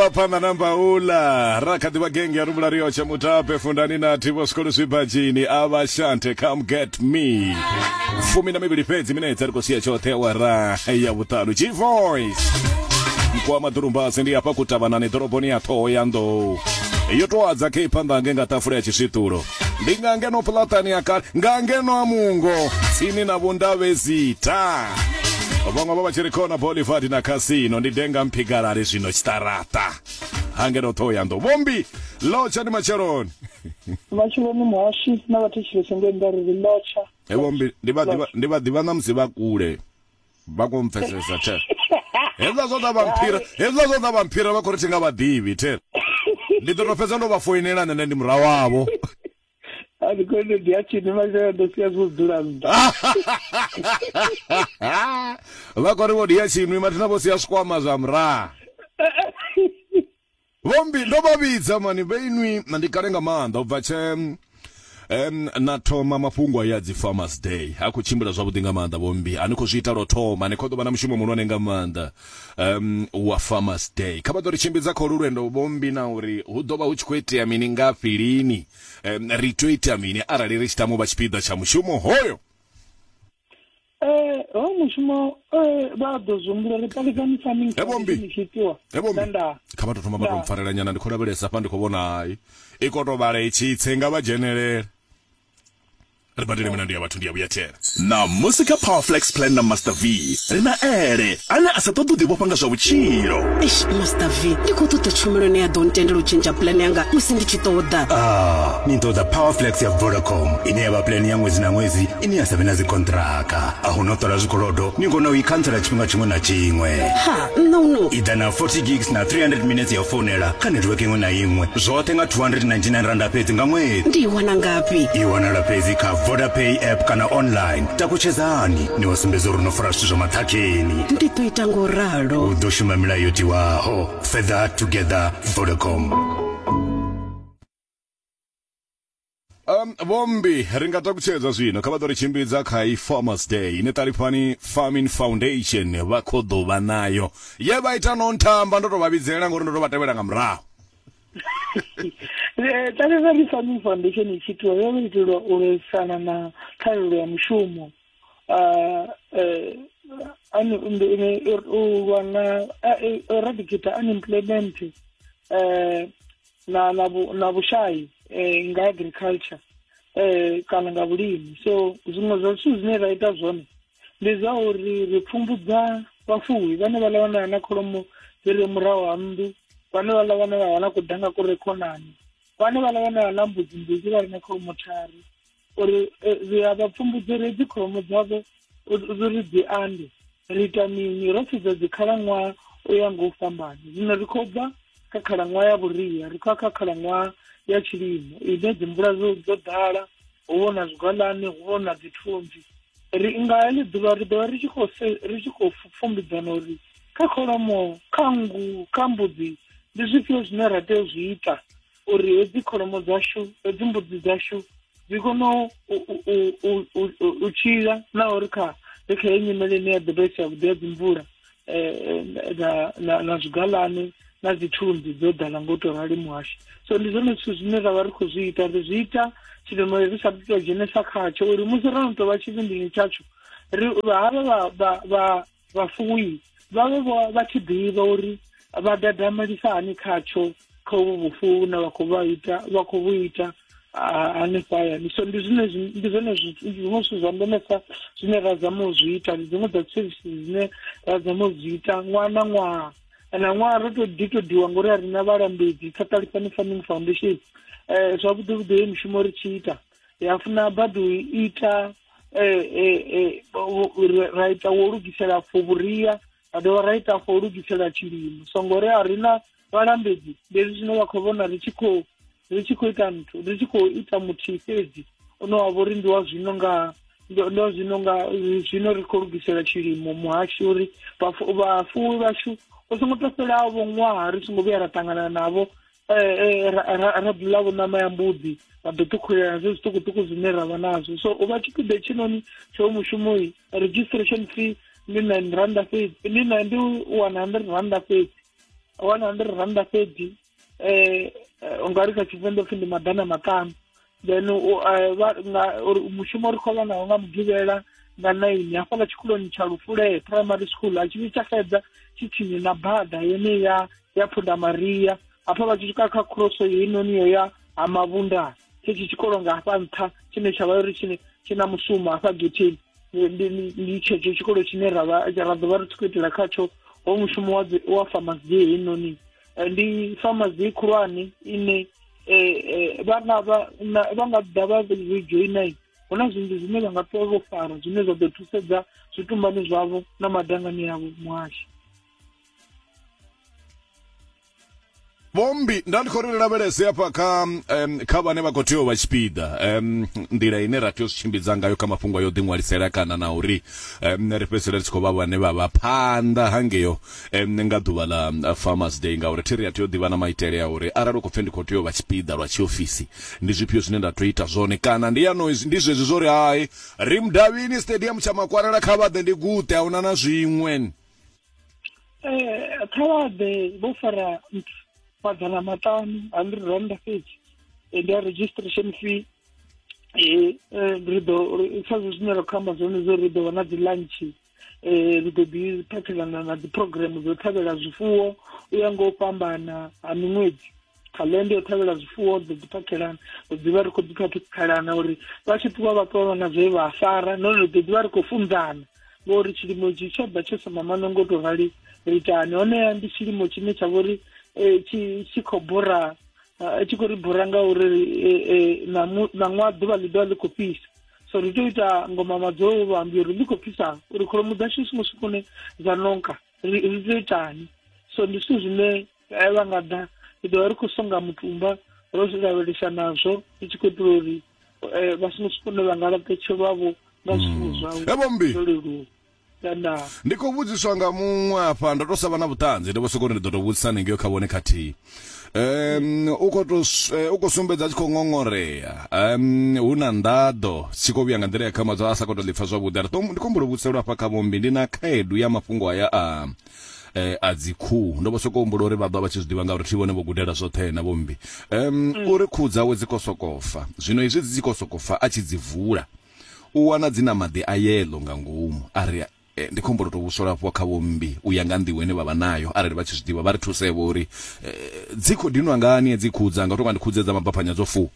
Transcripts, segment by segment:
bva phanḓa na mbaula ra kha ḓivha genge ya rumula rio tsha mutape fundani na thivo zwikolo zwibadzhini a vha shante come get me fumi na mivhili fhedzi minetse ri khou sia tshoṱhe awara ya vhuṱanu g voice mkowa maḓurumbasi ndi hafha kutavhanani ḓoroboni ya ṱhoho ya nḓou yo toadza khe phanḓa nge nga ṱafula ya tshiswiṱulo ndi nga ngeno pulatani ya kale nga ngeno a mungo tsini na vhundavhezita vhaṅwe vha vha tshi ri khona bolivard na casino ndi denga mphigalale zwino tshiṱaraṱa ha ngeno ṱhohoyanḓou vhombi lotsha ndi matsheloni matshiloni muhashi na vhathetshelesi ngenda ri ri lotsha Hey, vhombi ndi vha ḓivha- ndi vha ḓivha na musi vha kule vha kho mpfesesa the hezwiḽa zwa zwa vhamphira hezwiḽa zwa zwa vhamphira vha khou ri thi nga vhaḓivhi the ndi ḓo tou fhedza ndo vha foinela nṋe ndi murahu wavho ani khone ndi a tshini mashaya ndo sia zwo dzula nnḓa vha khou ri vho ndi ya tshinwi mathina vho sia zwikwama zwa murahu Vho mmbi, Ndo vha vhidza mani vhe inwi? Ndi kale nga maanḓa u bva tshe na thoma mafhungo aya a dzi Farmers Day. A khou tshimbila zwavhuḓi nga maanḓa vho mmbi. A ni khou zwi ita lwo thoma, ni khou ḓo vha na mushumo muhulwane nga maanḓa wa Farmers Day. Kha vha ḓo ri tshimbidza kha holu lwendo vho mmbi na uri hu ḓo vha hu tshi khou itea mini, ngafhi, lini, ri tea u ita mini arali ri tshi tama u vha tshipiḓa tsha mushumo hoyo. eh ho mushumo eh vha ḓo zumbula ri palikani farming Hebo mbi. ni tshi itiwa Hebo mbi. nda kha vha tou thoma vha tou Nda. mpfarelela nyana ndi khou lavhelesa hafha ndi khou vhona hai i khou tou vhala i tshi tse nga vha dzhenelele ri badele milandu ya vhathu ndi ya vhuyathela ṋamusi kha powerflex plan na master v ri na ele ane a sa ṱoḓi u ḓivhofha nga zwa vhutshilo eish master v ndi khou ṱoḓa tshumelo ine ya ḓo ntendela u tshentsha pulani yanga musi ndi tshi ṱoḓa Ah, ni ṱoḓa powerflex ya vodacom ine ya vha pulani ya ṅwedzi na ṅwedzi ine ya sa vhe na dzikontraka a hu no ṱola zwikolodo ni kona u i khantsela tshifhinga tshiṅwe na tshiṅwe ha nṋa u no i ḓa na 40 gigs na 300 minutes ya u founela kha netiweke iṅwe na iṅwe zwoṱhe nga 299 randa fhedzi nga ṅwedzi ndi i wana ngafhi i wanala fhedzi kha vodapay app kana online takutshedzani ni wa sumbedza uri no fara zwithu zwa maṱhakheni ndi ḓo ita ngo ralo u ḓo shuma milayo yo tiwaho further together vodacom Um, vhombi ri nga takutshedza zwino kha vha ḓo ri tshimbidza kha i farmers day ine ṱalifhani farming foundation vha khou ḓo vha nayo ye vha ita no nthamba ndo tou vha vhidzelela ngori ndo tou vha tevhela nga murahu ṱalifhani farming foundation i tshi itiwa yo itelwa u lwisana na ṱhahelelo ya mushumo um u lwa na eradicate unemployment um na na, vhu, na vhushai eh, nga agriculture eh, kana nga vhulimi so zwiṅwe zwa zwithu zwine ra ita zwone ndi zwa uri ri pfumbudza vhafuwi vhane vha lavhanela na kholomo dzi re murahu ha nnḓu vhane vha lavhanela wana kudanga ku re khonani vhane vha lavhanela na mbudzi mbudzi vha re na kholomo thari uri eh, ri a vha pfumbudzedzi kholomo dzavho uri dzi ande ri ita mini ro sedza dzikhalaṅwaha u ya nga u fhambana zwino ri khou bva kha khalaṅwaha ya vhuria ri khou ya kha khalaṅwaha ya tshilimo ine dzimvula dzo ḓala hu vho na zwigwalane hu vho na dzithunzi ri nga heḽi ḓuvha ri ḓovha ri tshi khou ri tshi khou pfumbudzana uri kha kholomo kha nngu kha mbudzi ndi zwifhio zwine ra tea u zwi ita uri hedzi kholomo dzashu hedzi mbudzi dzashu dzi kone u tshila na uri kha ri kha ye nyimele ine ya ḓo vha isi yavhuḓi ya dzimvula um na zwigalane na dzi thunzi dzo ḓala ngo to rali muhashi so ndi zwone zwithu zwine ra vha ri khou zwi ita ri zwi ita tshilimo ri sa tou dzhenesa khatsho uri musi ro no tou vha tshivhindini tshatsho ri havha vha vhafuwi vha vhe vho vha tshi ḓivha uri vha dadamelisa hani khatsho kha uvhu vhufuwi vhune vha khou vha ita vha khou vhu ita hanefho hayani so ndi zwine ndi zwone zwiṅwe zwithu zwa ndemesa zwine ra zama u zwi ita ndi dziṅwe dza services dzine ra zama u zwi ita ṅwaha na ṅwaha na ṅwaha ro to ḓi to diwa ngori a ri na vhalambedzi kha ṱalifhani farming foundation um zwavhuḓi vhuḓi heyi mushumo ri tshi ita ya funa badi u ita eh, eh, eh, ra ita wo lugisela for vhuria ra dovha ra ita for lugisela tshilimo so ngori a ri na vhalambedzi ndezwi zwine vha khou vhona ri tshi khou ri tshi khou ita nthu ri tshi khou ita muthihi fhedzi une wa vhori ndi wa zwino nga ndo zwino nga zwino ri khou lugisela tshilimo muhasho uri vhafuwi vhashu o songo tou fhelaho vho ṅwaha ri songo vhuya ra ṱangana navho eh, eh, ra bula vhunama ya mbudzi ra ḓo ṱhukhulela zwe zwiṱukuṱuku zwine ra vha nazwo so u vha tshipiḓa tshinoni tsho mushumoi registration fee ndi nine randa fhedzi ndi nine ndi one hundred randa fhedzi one hundred randa fhedzi um u nga ri kha tshivenḓa pfhi ndi maḓana maṱanu then eh, mushumo ri khou vha nawo nga mugivhela nga naini hafhaḽa tshikoloni tsha lufule primary school a tshi vhi tsha xedza tshi tsini na bada yene ya ya phunda maria hafha vha tshi swika kha khroso heinoni yo ya ha mavhundani thetshi tshikolo nga hafha nṱha tshine tsha vha uri tshine tshi na mushumo hafha getheni ndi tshetsho tshikolo tshine ra ḓo vha ri tshi khou itela khatsho ho mushumo wa farmasi heinoni eh, ndi famazi khulwane ine eh, eh, vha nga vha nga ḓa vha rejoina hu na zwinzhi zwine vha nga ṱuwa vho fara zwine zwa ḓo thusedza zwitumbani zwavho na madangani yavho muhasho vhombi nda ndi khou ri lavhelese hafha kha um, kha vhane vha khou tea u vha tshipiḓa um, nḓila ine ra tea u zwi tshimbidza ngayo kha mafhungo a yo ḓiṅwalisela kana na uri um, ri fhedzisela ri tshi khou vha vhane vha vha phanḓa hangeyo um, nga ḓuvha ḽa um, farmers day ngauri thi ri a tea u ḓivha na maitele a uri arali u khou pfe ndi khou tea u vha tshipiḓa lwa tshiofisi ndi zwifhio zwine nda tea ita zwone kana ndi yano ndi zwezwi zwo ri hai ri mudavhini stadium tsha makwarela kha vhaḓe ndi guṱe a huna na zwiṅwe um kha vhaḓe vho fara maḓana maṱanu hundred rand fhedzi eh, ndi a registration fee um ri ḓo sa zwe zwine ra khou amba zwone zwo ri ḓo vha na dzi lunch eh ri ḓo ḓi phathelana na dzi program dzo ṱhavhela zwifuwo u ya nga u fhambana ha miṅwedzi calenda yo ṱhavhela zwifuwo ḓo ḓi phakhelana ri ḓivha ri khou ḓi phathekhalana uri vha tshi ṱuwa vha ṱuwa na zwe vha fara nahone ri ḓo ḓivha ri khou funzana ngori tshilimo tshi tsho ḓa tsho sa mamano ngo tou rali ri itani honeha ndi tshilimo tshine tsha vha uri eh, tshi khou bora eh, tshi khou ri bora nga uri eh, na ṅwaha ḓuvha ḽi ḓovha ḽi khou fhisa so ri tea u ita ngoma madzulo wo vha ambi uri ndi khou pfisa uri kholomo dzashu songo swikone dza nonka ri tea u itani so ndi zwithu zwine eh, vha nga ḓa ri ḓovha ri khou songa mutumba ro zwi lavhelesa nazwo ri tshi khou itela uri eh, vha songo swikone vha nga laṱetshelwavho nga zwifuwo mm. zwavho zwo leluwa Nda. ndi khou vhudziswa nga muṅwe afha ndo to sa vha na vhuṱanzi ndo vho soko ri ndi ḓo to vhudzisa hanengeo kha vhone khathihi um u khou to s- eh, u khou sumbedza a tshi khou ṅoṅorea um hu na nḓaḓo tshi khou vhuya nga nḓila ya khamadzo a sa khou to ḓipfa zwavhuḓi ari ndi khou humbula u vhudziselwa hafha kha vhombi ndi na khaedu ya mafhungo aya a eh, a dzikhuhu ndo vho soko humbula uri vha ḓo vha tshi zwi ḓivha ngauri thi vhone vho gudela zwoṱhe na vhombi um uri khuhu dzawe dzi khou sokofa zwino izwi dzi tshi khou sokofa a tshi dzi vula u wana dzi na maḓi a yeḽo nga ngomu. A ri, E, ndi khombo ḽo tou vhuswa lafhiwa kha vhommbi u ya nga nḓivho ine vha vha nayo, arali vha tshi zwi ḓivha. Vha ri thuse-vho uri, E, dzi khou dinwa ngani hedzi khuhu dzanga? U tou nga ndi khuhu dze dza mabaphanya dzo fu.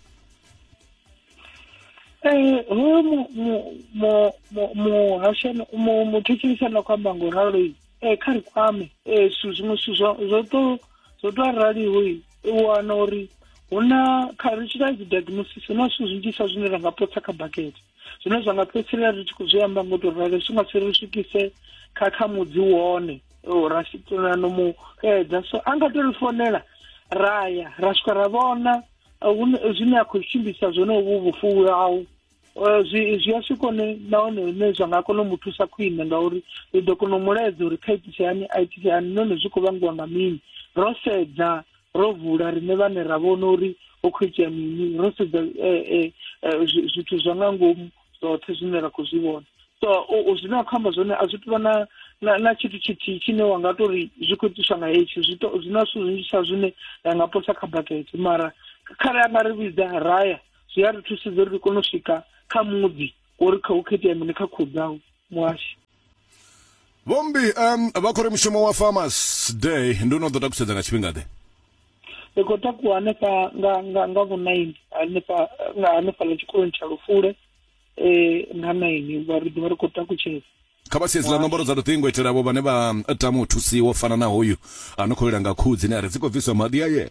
Eh, hoyo mu mu mu mu muhashana mu muthetshelisi ane a khou amba nga u ralo eh kha ri kwame eh zwithu zwiṅwe zwithu zwo zwo to zwo to araliho u wana uri hu na kha ri tshi ita dzi diagnosis hu na zwithu zwinzhisa zwine ra nga potsa kha bakete zwine zwa nga fhedzisela ri tshi khou zwi amba ngo to ralo zwi nga si ri swikise kha kha mudzi wone ra situla no mu edza so a nga to ri fonela ra ya ra swika ra vhona zwine a khou tshimbisa zwone uvhu vhufuwi hau Eh, zwi zwi a swika hone nahone hune zwa nga kona u mu thusa khwine ngauri ri ḓo kona u mu laedza uri kha itise hani a itise hani nahone zwi khou vhangiwa nga mini ro sedza ro vula riṋe vhane ra vhona uri ho khou itea mini ro sedza eh, eh, zwithu zwa nga ngomu zwoṱhe zwine ra khou zwi vhona so zwine a khou amba zwone a zwi tuvha na na tshithu tshithihi tshine wa nga tori zwi khou itiswa nga hetshi zwi na zwithu zwinzhisa zwine ra nga posa kha bakete mara kharali a nga ri vhidza raya zwi a ri thusedza uri ri kone u swika kha muḓi uri kha u khethea mini kha khuhu dzau muhashi vhombi um vha khou ri mushumo wa farmers day ndi u no ḓo takusedza nga tshifhinga ḓe ri khou takuwa hanefha nga nga nga vhunaini hanefha nga hanefha ḽa tshikoloni tsha lufule eh nga naini vha ri ḓivha ri khou takutshedza kha vha siedzi ḽa nomboro dza luṱingo itela vho vhane vha tama u thusiwa u fana na hoyu a no khou lila nga khuhu dzine a ri dzi khou bviswa maḓi a yena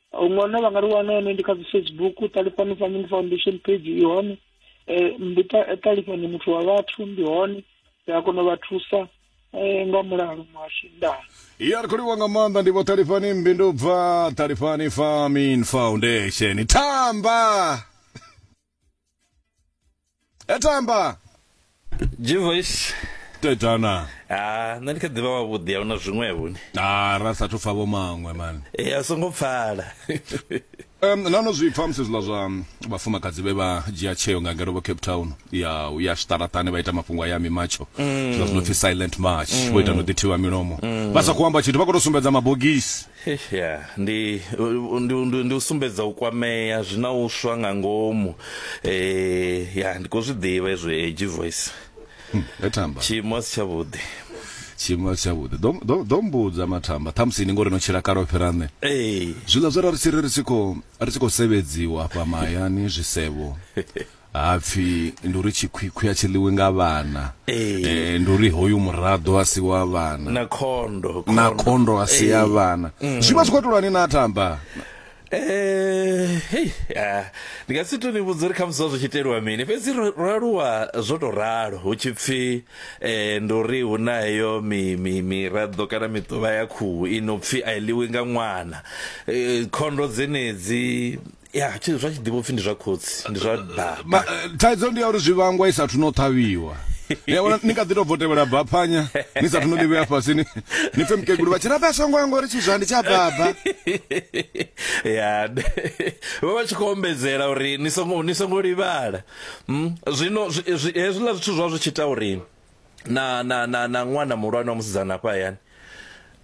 huṅwana vha nga ri wana hone ndi kha dzi facebook ṱalifhani family foundation page i hone um ndi ṱalifhani muthu wa vhathu ndi hone ri a kona u vha thusa um nga mulalo muhasho ndaa ya ri khou livhuwa nga maanḓa ndi vho ṱalifhani mbindu bva ṱalifhani farming foundation tamba etamba gvoice tetana ha nṋe ndi kha ḓivha wavhuḓi a huna zwiṅwevho ni a ra sathu pfa vho maṅwe mani e a songo pfala um nano zwi pfa musi zwiḽa zwa um, vhafumakadzi vhe vha dzhia tsheo nga ngeno vho cape town ya u ya zwiṱaraṱani vha ita mafhungo a ya mimatsho zwiḽa zwi no pfi silent march vho ita no ḓithiwa milomo vha sa khou amba tshithu vha khou tou sumbedza mabogisi Ya, ndi ndi ndi ndi u sumbedza u kwamea zwi na u swa nga ngomu eh ya ndi khou zwi ḓivha hezwo edgy voice Mathamba tshiimo a si tshavhuḓi tshiimo a si tshavhuḓi Ḓo- ḓo- ḓo mbudza mathamba ṱhamusi ni ngori no tshila kale o fhira nṋe ee zwiḽa zwe ra ri tshi ri ri tshi khou ri tshi khou sevedziwa hafha mahayani zwisevho hapfi ndi uri tshikhwikhwi a tshi ḽiwi nga vhana Ee. Eh, ndi uri hoyu muraḓo a si wa vhana na khondo na khondo a si ya vhana zwi vha zwi khou itolwani na tamba Eh, hei, ah, ndi nga si to ni vhudza uri khamusi zwa zwi tshi iteliwa mini fhedzi ro ro aluwa zwo to ralo hu tshi pfi eh, ndi uri hu na heyo mi- mi- miraḓo kana miṱuvha ya khuhu i no pfi a i ḽiwi nga ṅwana Eh, khondo dzenedzi ya tshi zwa tshi ḓivha upfhi ndi zwa khotsi ndi zwa baba eh, thaidzo ndi ya uri zwivhangwa i sathu no ṱhavhiwa yavona ni kha ḓi tou bvo tevhela baphanya ni sathu no ḽivhea fhasi ni ni pfe mukegulu vha tshi rabe a songo ya ngori tshizwa ndi tsha baba ya vha vha tshi khou ombedzela uri ni songo ni songo livhala hmm? zwino hezwiḽa zwithu zwa zwi tshi ita uri na na na na ṅwana muhulwane wa musidzana hafha hayani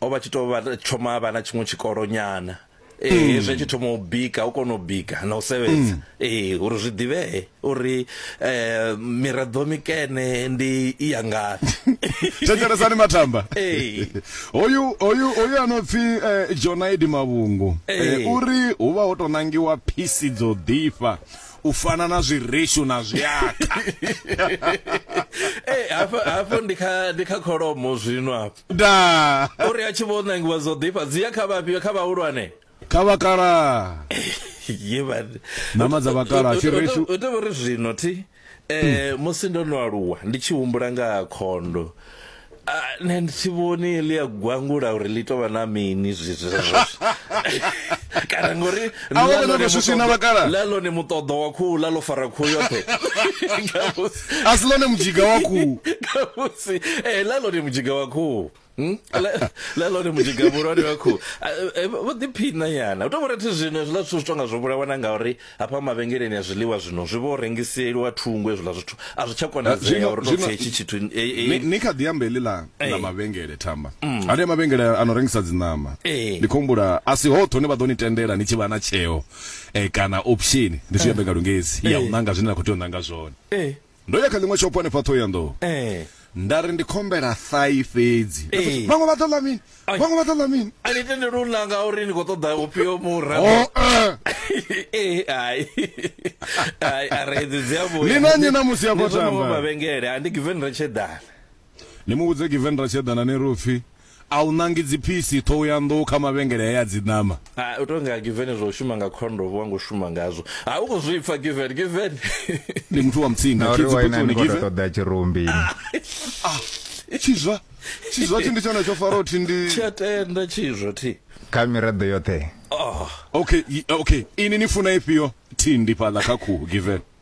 o vha tshi to vha thoma a vha na tshiṅwe tshikolo nyana ee eh, hmm. zwi tshi thoma u bika u kona u bika na u sevhedza hmm. ee eh, uri zwi ḓivhee uri eh miraḓo mikene ndi i ya ngafhi thetshelesani mathamba ee hoyu hoyu hoyu ano pfi eh, Jonaidi Mavhungu uri hu vha ho to nangiwa phisi dzo ḓifha u fana na zwireshu na zwiaka eh, hafho hafho ndi kha ndi kha kholomo zwino hafho da uri a tshi vho nangiwa zwo ḓifha dzi ya kha vhafhio kha vhahulwane kha vhakala ye ba nama dza vhakala tshireshu u tovha ri zwino thi eh musi ndo no aluwa ndi tshi humbula nga khondo nṋe ndi si vhoni ḽi a gwangula uri ḽi tovha na mini zwizwezwo kana ngori ḽa lone muṱoḓo wa khuhu ḽa ḽo fara khuhu yoṱhe a si ḽone mudzhiga wa khuhu khamusi ee ḽa lone mudzhiga wa khuhu hmm? ḽa lone mudzhiga muhulwane wa khuhu vho ḓiphina nyana u to vhona thi zwino hezwiḽa zwithu zwi tonga zwo vhulawana ngauri Hafha mavhengeleni a zwiḽiwa zwino zwi vho rengiseliwa thungo hezwiḽa zwithu a zwi tsha konadzea uri tou pfhi hetshi tshithu ni kha ḓi amba heḽi ḽa ḽa mavhengele thamba mm. hanea mavhengele a no rengisa dziṋama ndi khou humbula a si hoṱhe hune vha ḓo ni tendela ni tshi vha na tsheo eh, kana option ndi zwi amba nga lungezi ya u ṋanga zwine na khou tea u ṋanga zwone ndo ya kha ḽiṅwe shopo hanefha thohoyanḓou eh nda ri ndi khombela thai fhedzi eh. vhaṅwe vha ḓo ḽa mini vhaṅwe vha ḓo ḽa mini a ni tendeli u ḽa nga uri ni khou ṱoḓa ufhio mura oh, eh. eh, ai ai a re edzi dzi a vhuya ni na nyi na musi ya khou tamba mavhengele a ndi given ri tshe dala Ni mu vhudze Given Ratshedana ni ri u pfi, A u ṋangi dziphisi, ṱhohoyanḓou kha mavhengele haya a dziṋama? Ha, u tou nga Given zwa u shuma nga khondomu wa ngo shuma ngazwo. Ha, u khou zwi pfa Given, Given. Ndi muthu wa mutsinda, Na uri waina ni khou tou ṱoḓa tshirumbi. Ah, tshizwa, tshizwa thi ndi tshone tsho Faro thi ndi. Thi a tenda tshizwa thi. Kha miraḓo yoṱhe. Oh. Okay, okay, ini ni funa ifhio thi ndi fhaḽa kha khuhu Given?